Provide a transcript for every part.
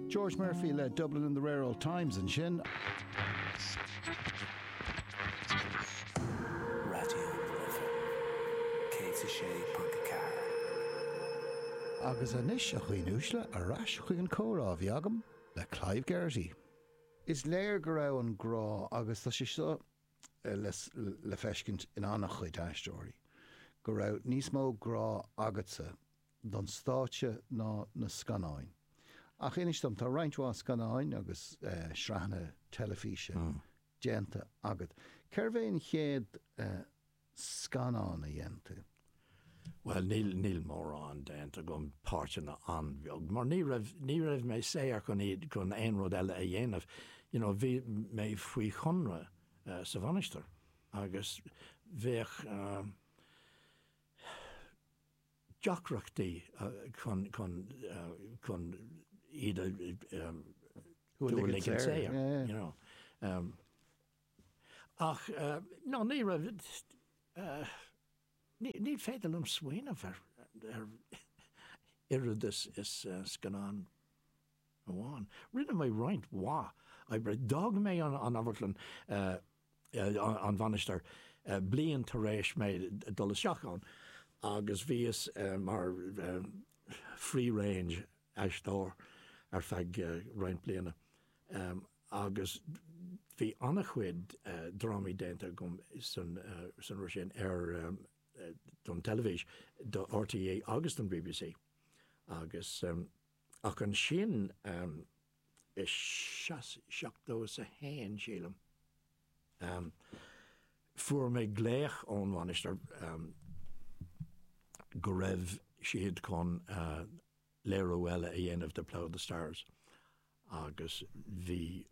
George Murphy le Dublin in the Rare Old Times ansin. Agus anois, a dhaoine uaisle, ar ais chuig an comhrá a bhí agam le Clive Geraghty. Is léir go raibh an grá, agus tá sé seo le feiscint in an-chuid aisteoirí, go raibh níos mó grá agatsa don stáitse ná na scannáin. Ach inis dom, tá roinnt mhaith scannáin agus sraitheanna teilifíse déanta agat. Cérbh é an chéad scannán a dhein tú? Bhuel, níl, níl mórán déanta agam, páirteanna an-bheag, mar ní raibh, ní raibh mé saor chun iad, chun aon rud eile a dhéanamh. You know, bhí mé faoi chonradh sa Mhainistir agus bheadh, deacrachtaí chun iad a fháil saor. Ach no, ní raibh, ní féidir liom smaoineamh ar oiread is scannán amháin. Rinne mé roinnt mhaith oibre. D'fhág mé an Amharclann. an mhainistir bliain tar éis mé dul isteach ann agus bhíos mar free range aisteoir ar feadh roinnt bliana agus bhí an-chuid drámaí déanta agam sa ré sin ar don teilifís, do RTÉ agus don BBC agus ach ansin, i seas seachtó is a haon, sílim. Ahem. Fuair mé glaoch ón Mhainistir go raibh siad chun léiriú eile a dhéanamh de Plough and the Stars agus bhí,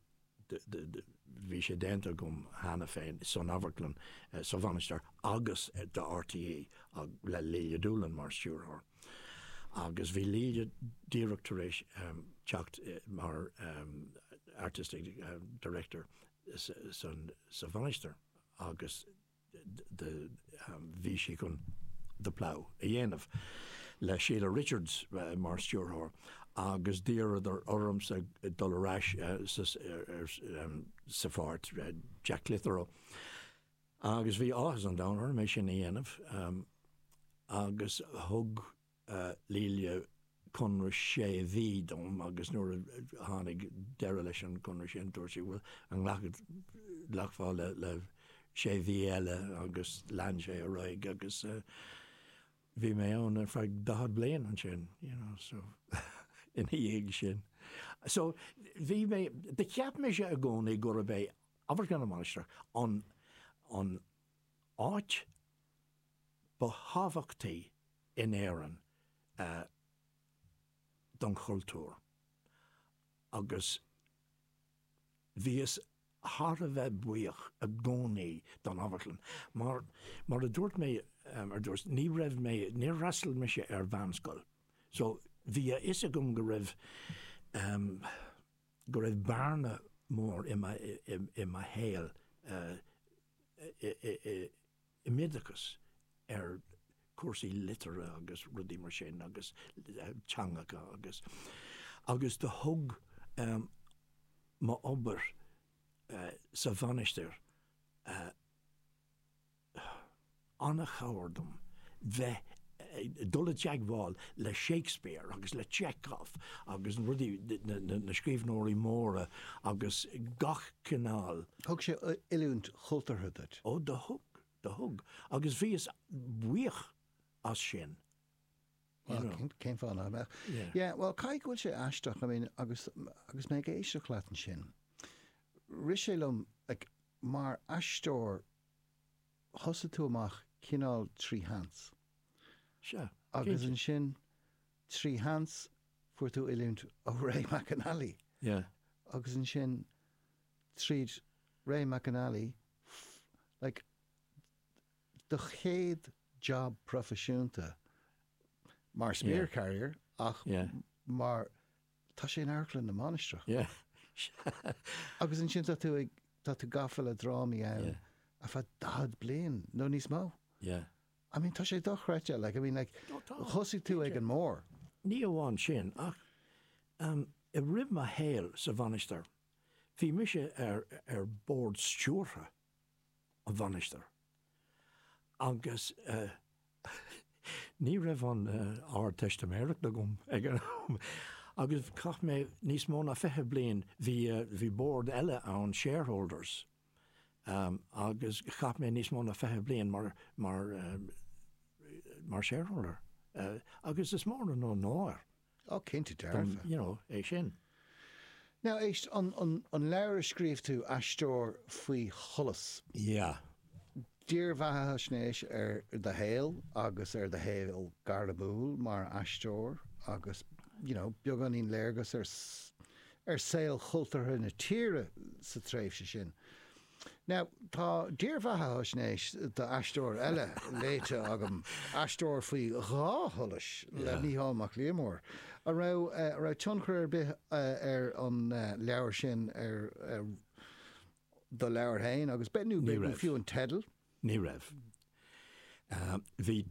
bhí sé déanta agam cheana féin san amharclann sa Mhainistir agus do RTÉ le Lelia Doolan mar stiúrthóir. Agus bhí Lelia díreach tar éis teacht mar artistic director sa Mhainistir agus bhí sí chun The Plough a dhéanamh le Sheila Richards mar stiúrthóir agus d'iarradar ormsa dul ar ais sa pháirt Jack Clitheroe. Agus bhí áthas an domhain orm é sin a dhéanamh agus thug Lelia conradh sé mhí dom agus nuair a tháinig deireadh leis an gconradh sin dúirt sí, bhuel, an nglacfá le sé mhí eile agus lean sé ar aghaidh agus bhí mé ann ar feadh 40 bliain ansin, you know, so ina dhiaidh sin. So bhí mé, cheap mise i gcónaí gurb é Amharclann na Mainistreach an áit ba thábhachtaí in Éirinn don chultúr agus bhíothas thar a bheith buíoch i gcónaí don amharclann. Mar a dúirt mé ar dtús, ní raibh mé, níor fhreastail mise ar mheánscoil so bhí a fhios agam go raibh go raibh bearna mór i mo shaol i m'oideachas ar chúrsaí liteartha agus rudaí mar sin agus teangacha agus agus do thug m'obair sa mhainistir an-chabhair dom bheith ag dul i dteagmháil le Shakespeare agus le Chekhov agus rudaí, na scríbhneoirí móra agus gach cineál. Thug sé oiliúint chultúrtha duit? Ó, do thug, do thug. Agus bhíos buíoch as sin. Well, cén fáth nach mbeadh? Yeah, well, caithfidh go bhfuil sé aisteach, I mean, agus, agus mé ag éisteacht leat ansin, rith sé liom, like, mar aisteoir, thosaigh tú amach cineál trí sheans. Sea. Agus ansin, trí sheans, fuair tú oiliúint ó Ray McAnally. Sea. Agus ansin, tríd Ray McAnally, like, do chéad job proifisiúnta, mar spear carrier ach mar, Tá sé in Amharclann na Mainistreach. Agus ansin tá tú ag, tá tú gafa le drámaí ann ar feadh daichead bliain nó níos mó. I mean, tá sé dochreidte, like, I mean, like, thosaigh tú ag an mór. Ní amháin sin, ach i rith mo shaoil sa mhainistir, bhí mise ar, ar bhord stiúrtha. na Mainistreach agus ní raibh an Ardteistiméireacht agam ag an am agus chaith mé níos mó ná fiche bliain, bhí bord eile ann, shareholders, agus chaith mé níos mó ná fiche bliain mar shareholder agus is mór an onóir. Ó, cinnte dearfa. you know, é sin. Now, éist, an, an, an leabhar a scríobh tú, Aisteoir faoi Sholas. Yeah. Dírbheathaisnéis ar do shaol agus ar do shaol gairmiúil mar aisteoir agus, you know, beagáinín léargas ar, ar shaol cultúrtha na tíre sa tréimhse sin. Now, tá dírbheathaisnéis d'aisteoir eile léite agam, Aisteoir faoi Dhá Sholas le Mícheál Mac Liammóir. An raibh tionchar ar bith ag an leabhar sin ar do leabhar féin agus, nó fiú an teideal? Ní raibh. Ní raibh. Bhí.